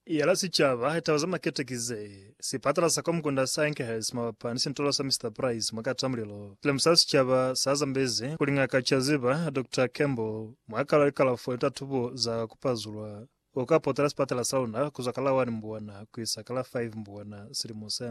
Yala sicaba taba za makete ki ze, Sipatala sa Komkunda sa Enkhurst mabapa ni sintolo sa Mister Price mwa Katamulilo, lemusa sicaba sa Zambezi kuli Ng'aka Chaziba, Doctor Campbell, mwa kalo ya likalafo ni tatubo za ku pazulwa, u ka potela sipatala sa luna ku zwa ka la 1 Mbuwana ku isa ka la 5 Mbuwana silimo se.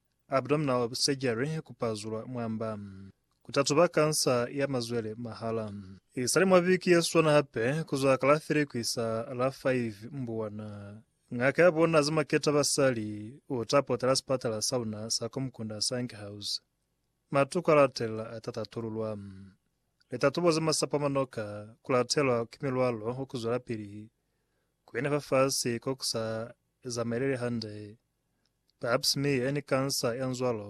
abdominal surgery, ku pazulwa mwamba, ku tatuba kansa ya mazwele mahala. Isali mwa viki ye swana hape, ku zwa ka la 3 ku isa la 5 Mbuwana, ngaka ya bona za maketa basali u ta potela sipatala sa luna sa Komkunda Sanghaus. Matuku a latelela a ta tatululwa. Litatubo za masapo a manoka, ku latelwa ki milwalo wa ku zwelapili, ku ina fafasi ko ku sa zamaeleli hande, Pap smear ni kansa ya nzwalo.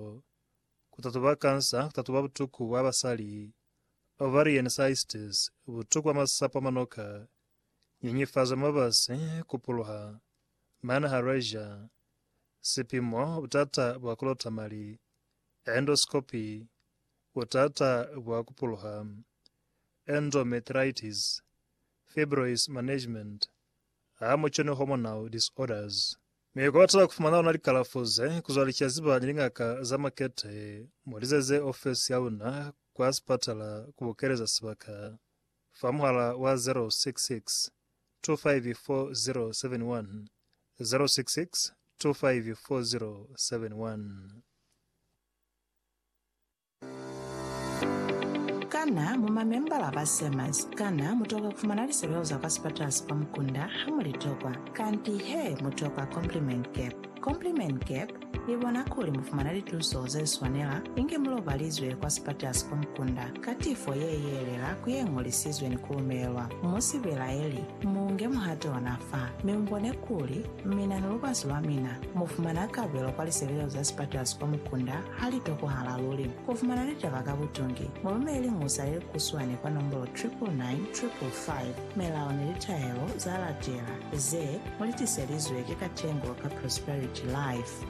Ku tatuba kansa ku tatuba butuku bwa basali, ovarian cystes, butuku bwa masapo a manoka, nyenyefazo ya mabasi, ku puluha, manharasia, sipimo, butata bwa ku lota mali, endoscopy, butata bwa ku puluha, endometritis, fibroids management, Ha mu cwene hormonal disorders, mi kwa batala ku fumana ona likalafo ze kuzwa licaziba ni lingaka za makete, mu lizeze ofesi ya luna kwa sipatala ku bokeleza sibaka fa muhala wa 066 254071, 066 254071. Kana mu mamembala ba SEMAS? Kana mu tokwa ku fumana lisebeo za kwa sipatala sa kwa mukunda ha mu li tokwa? Kanti he, mu tokwa Compliment Cap. Compliment Cap i bona kuli mu fumana lituso ze swanela inge mu lobalizwe kwa sipatala sa kwa mukunda ka tifo ye yeelela ku ye ñolisizwe ni ku lumelelwa. Mu si belaeli, mu nge muhato ona fa, mi mu bone kuli mina ni lubasi lwa mina mu fumana kabelo kwa lisebeo za sipatala sa kwa mukunda Ha li tokohala luli ku fumana litaba ka butungi, mu lumele musa ye kuswani kwa nombolo 99955. Melao ni litahelo za latela, ze mu li tiselizwe ki Katengo ka Prosperity Life.